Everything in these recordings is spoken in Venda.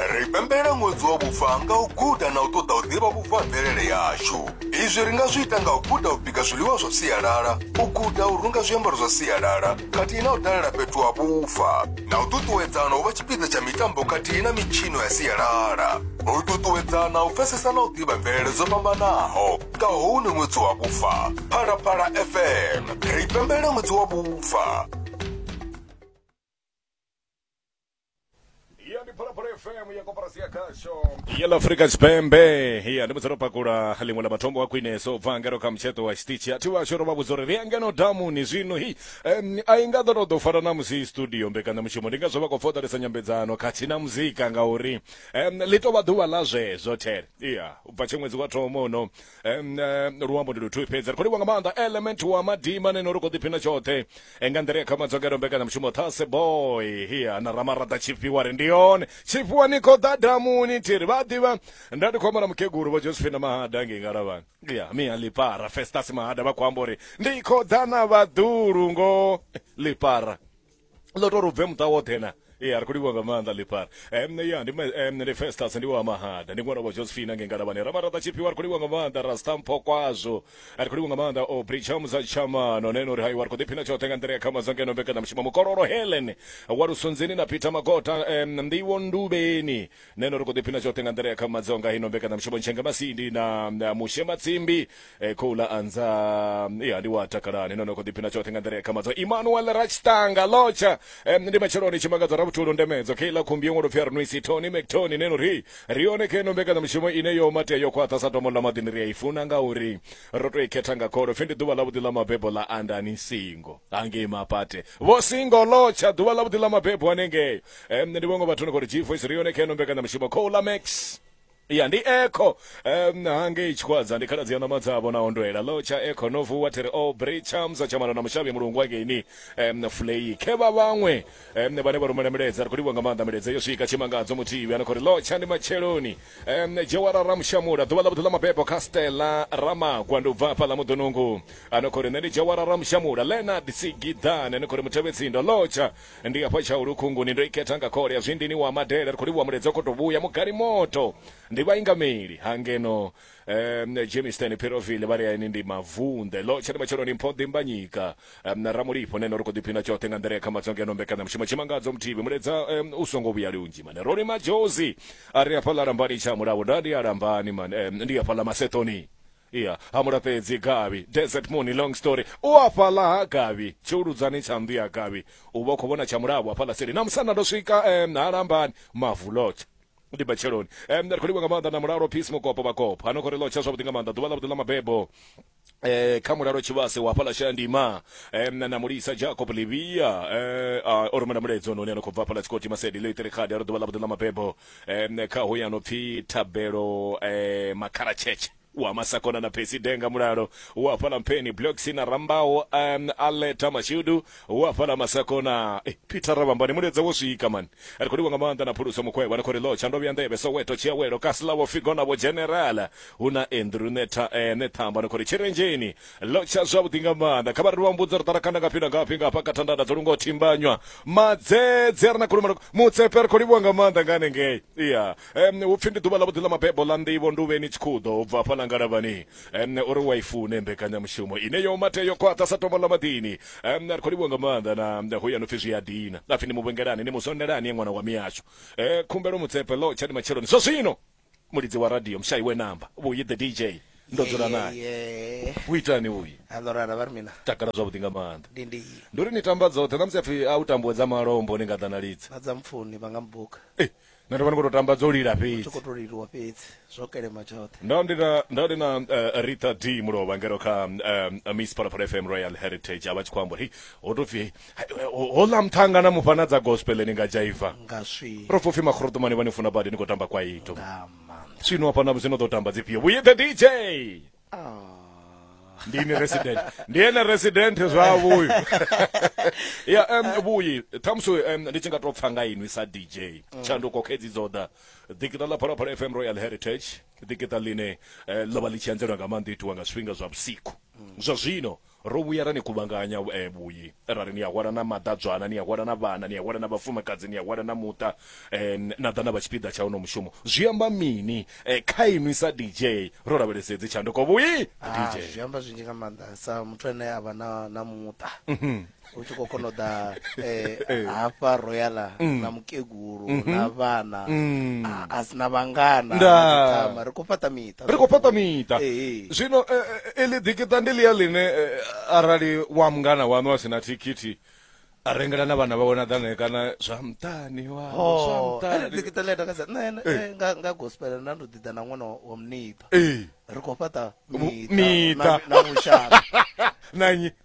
ri pembela ṅwedzi wa vhufa nga u guda na u ṱoḓa u ḓivha vhubvo ha mvelele yashu izwi ri nga zwi ita nga u guda u bika zwiḽiwa zwa sialala u guda u runga zwiambaro zwa sialala khathihi na u dalela fhethu ha vhufa na u ṱuṱuwedzana u vha tshipiḓa tsha mitambo khathihi na mitshino ya sialala u ṱuṱuwedzana u pfesesa na u ḓivha mvelele dzo fhambanaho nga houno ṅwedzi wa vhufa phalaphala fm ri pembela ṅwedzi wa vhufa iya ndi phalaphala fm ya koporasi ya khasho ya la afrika tshipembe iya ndi mudzero pakula limwe la matombo a khwineso bva ngeno kha mutsheto wa xitichi a thiwa xoro vha vhudza uri ri ya ngeno damuni zwino hi em, a i nga ḓo tou ḓo fara na musi studio mbekanyamushumo ndi ngazwo vha khou foḓalesa nyambedzano khathihi na muzika ngauri em, ḽi tou vha ḓuvha ḽa zwezwo there iya u bva tshe ṅwedzi wa thoma uno Em, eh, luambo ndi luthu fhedzi ri khou livha nga maanḓa element wa madima neno ri khou ḓiphina tshoṱhe Eh, nga nḓila ya kha madzogero mbekanyamushumo thase boy hiya na ramaraḓa tshifhiwa ri ndi yone tshifhiwa ni khou ḓa damuni thiri vha a ḓivha nda ndi khou amba na mukegulu vho josephine mahada ngei ngalavhani ya mia lipara festas mahada vha khou amba uri ndi khou ḓa na vhaḓulu ngo lipara ḽo tou ri bve muṱa woṱhe na ya ri khou livhuwa nga maanḓa ḽifara um ya ndi um ndi festas ndi wa mahada ndi ṅwana wa josephine ange ngalavhani ramaraṱa tshiphiwa ri khou livhuwa nga maanḓa rastampho kwazwo ri khou livhuwa nga maanḓa o bricham za tshamano neno uri haiwa ri khou ḓiphina tshoṱhe nga nḓila ya khama zangeno mbekanyamushumo mukololo helen wa lusunzini na peter magota um nḓiwo nduvheni Nṋe no ri khou ḓiphina zwoṱhe nga nḓila ya kha madzo nga hino mbekanyamushumo Ntshenge Masindi na Mushe Matsimbi eh, khou ḽa anza ya ndi wa takalani no no khou ḓiphina zwoṱhe nga nḓila ya kha madzo Emmanuel Ratstanga Locha eh, ndi matsheloni tshimangadzo ra vhutulu ndemedzo kheiḽa khumbi yo ṅwalo pfi Arnwisi Tony McTony neno ri ri yone khe no mbekanyamushumo ine yo matea yo khwaṱha sa tomo ḽa maḓini ri a i funa nga uri ro to i khetha nga kholo pfi ndi ḓuvha ḽa vhuḓi ḽa mabebo ḽa andani singo hangei mapate vho singo Locha ḓuvha ḽa vhuḓi ḽa mabebo hanengeyo Eh, mne ndi vhongo vhathu ni khou ri g voice ri yone kha ino mbekanyamushumo cola max ya ndi eco um, hangei tshikhwadza ndi khaladzi ya ṋama dzavho na ondwela lo tsha eco no vuwa thiri o bri chamsa tshamano na mushavhi mulungu wangeini um, fulei khe vha vhaṅwe um, vhane vha rumela milaedza ri khou livhuwa nga maanḓa milaedza yo swika tshimangadzo muthihi ano khou ri lo tsha ndi matsheloni um, jewara ramushamula ḓuvha ḽa vhuḓi ḽa mabebo kha stela ramagwa ndi u bva hafha ḽa muḓonungu ano khou ri nṋe ndi jewara ramushamula leonard sigidane ano khou ri mutevhetsindo lotsha Ndi hafha Tshaulu Khunguni ndo i khetha nga khole ya Zwindini wa Madela ri khou livhuwa Muledza kho to vhuya Mugani Moto ndi vhaingameli ha ngeno um, Germiston Phiroville vha ri aini ndi mavunḓe ḽo tsha ndi matsheloni mpho Dimbanyika um, Ramulipho neno ri khou ḓiphina tshoṱhe nga nḓila ya kha madzo ngeno mbekanyamushumo Tshimangadzo Muthibi Muledza um, u songo vhuya lunzhi mane Roni Majozi a ri hafhaḽa lambani tsha mulavo nda ndi a lambani mane um, ndi hafhaḽa Masetoni iya ha mulafhedzi gavhi desert moon long story u afhaḽa ha gavhi tshiuludzani tsha nnḓu ya gavhi u vha u khou vhona tsha mulavo hafhaḽa seli na musanda ndo swika um ha lambani mavu lotsha ndi batsheloni um ri khou livha nga maanḓa na mulalo peace mukopo vhakopo ano khou ri lotsha zwavhuḓi nga maanḓa ḓuvha ḽavhuḓi ḽa mabebo eh kha mulalo tshivhase wa fhala shandima em na mulisa jacob livia eh o rumela muledzo noni ano khou bva fhala tshikoti masedi ḽo itere khadi a ri ḓuvha ḽa vhuḓi ḽa mabebo um kha hoya no pfi thabelo um makhara tshetshe wa masakona na phesi denga mulalo wa fhala mpheni bloksi na rambaho um aleta mashudu wa fhala masakona eh, peter ravambani muledza wo swika mani ri khou livha nga maanḓa na phuluso mukhwevha ni khou ri lotsha ndo vhuya nḓevhe soweto tshiawelo kasilavo figo na vho generala hu na andrew neta eh, nethamba ni khou ri tshirenzheni lotsha zwavhuḓi nga maanḓa kha vha ri vha mbudza ri ṱarakhanda ngafhi na ngafhi nga hafha kathandanda dzo lungo thimbanywa madzedze a re na khulumalo mutsepe ri khou livhuwa nga maanḓa nga hanengei iya um hu pfi ndi ḓuvha ḽavhuḓi ḽa mabebo ḽa nḓivho ndi uvheni tshikhuḓo u bva hafha ḽa ngalavhani um uri wa i fune mbekanyamushumo ine yo mate yo khwaṱha sa tombo ḽa maḓini um ri khou livhuwa nga maanḓa na hu ya no pfi zwi a dina apfi ni mu vhengelani ni mu sondelani ye ṅwana wa miyashu um khumbelo mutsepe lotsha ndi matsheloni zwa zwino mulidzi wa radio mushayi we namba vhuyi the dj ndo dzula naye Yeye. u itani vhuyi A ndo rara vha ri mina. takala zwavhuḓi nga maanḓa Ndi ndi ndi uri ni tamba dzoṱhe na musi apfi a u tambuwe dza malombo ni nga ḓa na lidzi na dza mpfuni vha nga mbuka. Eh, nṋe ndo vha ndi khou tou tamba dzo lila Tshi fhedzi khou to liliwa fhedzi. Zwo kelema tshoṱhe. ndo ndi na ndo ndi na uh, Rita D Mulovha ngero kha um, Miss Phalaphala FM Royal Heritage avha tshi khou amba uri ho to pfi houḽa muṱhanga na mufha na dza gospel ni nga dzhaiva nga swi ro pfopfi makhorotomani vha ni funa badi ni khou tamba kwaito nga maanḓa zwino hafha na zwino ḓo tamba dzifhio vhuye the dj ndi ni resident ndi ene resident zwavho uyu ya um, vhuyi ṱhamusi um, ndi tshi nga tou pfa nga inwi sa dj tshanduko khedzi dzo ḓa ḓikiṱa ḽa phalaphala fm royal heritage ḓikiṱa ḽine eh, ḽo vha ḽi tshi anzelwa nga maanḓa itiwa nga zwifhinga zwa vhusiku zwa zwino Ro vhuya ra ni kuvhanganya vhuyi ra ri ni a hwala na maḓadzwana, ni a hwala na vhana, ni a hwala na vhafumakadzi, ni a hwala na muṱa na ḓa na vha tshipiḓa tsha uno mushumo. Zwi amba mini kha inwi sa DJ? Ro lavhelesa hedzi tshanduko vhuyi? DJ. Zwi amba zwinzhi nga maanḓa sa muthu ane a vha na muṱa. u tshi khou kona u ḓa eh, eh. hafha royala mm. na mukegulu mm-hmm. na vhana mm. ah, a sina vhangana ri khou fhaṱa miṱa ri khou fhaṱa miṱa eh, zwino iḽi ḓikiṱa ndi ḽia ḽine arali wa mungana waṋu a sina thikhithi a rengela na vhana vhawe na ḓane kana zwa mṱani waḓikiṱa ḽi atakadza nṋe nga gospel nda ndo ḓiḓa na ṅwana wa muniṱa ri khou fhaṱa miṱa na vhushaka na nnyi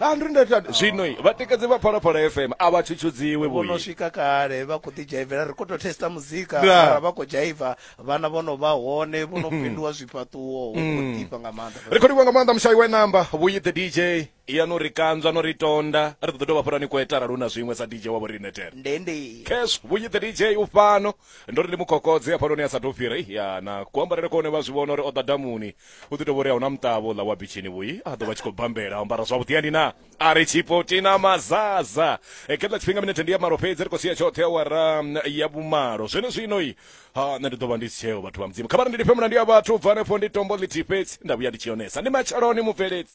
100 zwino i vhatikedzi vha phalaphala fm a vha tshutshudziwi vho no vhuyi swika kale vha khou ḓidzhaivela ri khou tou testa muzika Nda. mara vha khou dzhaiva vhana vho no vha hone vho no fhinduwa zwifhaṱuwo hu khou ḓifha nga maanḓa ri khou livhuwa nga maanḓa mushayi wa namba vhuyi the dj ya no ri kanzwa no ri tonda ri ḓo ḓi dovha fhurani kweta arali hu na zwiṅwe sa dj wa vho riṋe tena ndende cash vhunyi the dj u fhano ndo ri ndi mukhokodzi hafhanoni a sa tou fhira Ih, ya na kuambarele kone vha zwi vhona uri o ḓa damuni u ḓi tou vhori a huna muṱavho ḽa wa bitshini vhuyi a ḓo vha tshi khou bambela ambara zwavhuḓi ani na a ri tshipoti na mazaza e khetla tshifhinga minete ndi ya malo fhedzi ri khou sia tshoṱhe awara mm, ya vhumalo zwene zwinoi ha nṋe ndi ḓo vha ndi si tsheo vhathu vha mudzimu kha vha ri ndi lifhe mulandu ya vhathu bva hanefho ndi tombo ḽithihi fhedzi nda vhuya ndi tshi yonesa ndi matsheloni mubveledzi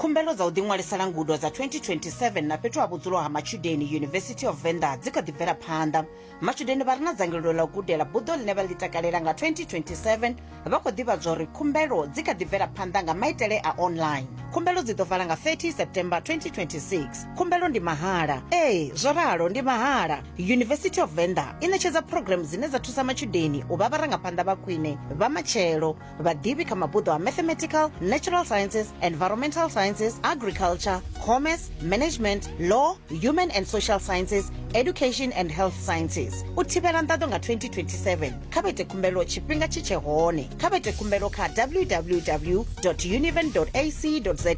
Khumbelo dza u ḓiṅwalisela ngudo dza 2027 na fhethu ha vhudzulo ha matshudeni University of Venda dzi kha ḓi bvela phanḓa. Matshudeni vha re na dzangalelo ḽa u gudela buḓo ḽine vha ḽi takalela nga 2027 vha khou ḓivhadzwa uri khumbelo dzi kha ḓi bvela phanḓa nga maitele a online. Khumbelo dzi ḓo vala nga 30 September 2026. Khumbelo ndi mahala. Ee, zwo ralo ndi mahala. University of Venda i ṋetshedza program dzine dza thusa matshudeni u vha vharangaphanḓa vha khwine vha matshelo. vhaḓivhi kha mabuḓo a mathematical natural sciences environmental sciences agriculture commerce management law human and social sciences education and health sciences u thivhela nḓaḓo nga 2027 kha vha ite khumbelo tshifhinga tshi tshe hone kha vha ite khumbelo kha www univen ac za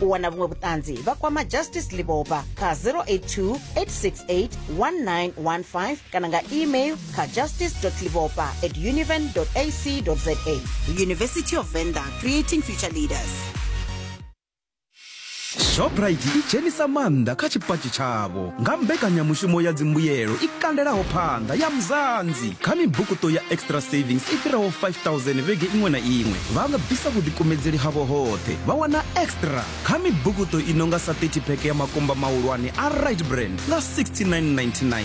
u wana vhuṅwe vhuṱanzi vha kwama justice liboba kha 082 868 1915 kana nga email kha justice.livopa at univen.ac.za. University of Venda, creating future leaders. shoprite i dzhenisa maanḓa kha tshipatshi tshavho nga mbekanyamushumo ya dzimbuyelo i kandelaho phanḓa ya mzanzi kha mibukuṱo ya extra savings i fhiraho 5000 vhege iṅwe na iṅwe vha nga bvisa vhuḓikumedzeli havho hoṱhe vha wana extra kha mibukuṱo i no nga sa 30 pheke ya makumba mahulwane a right brand nga 6999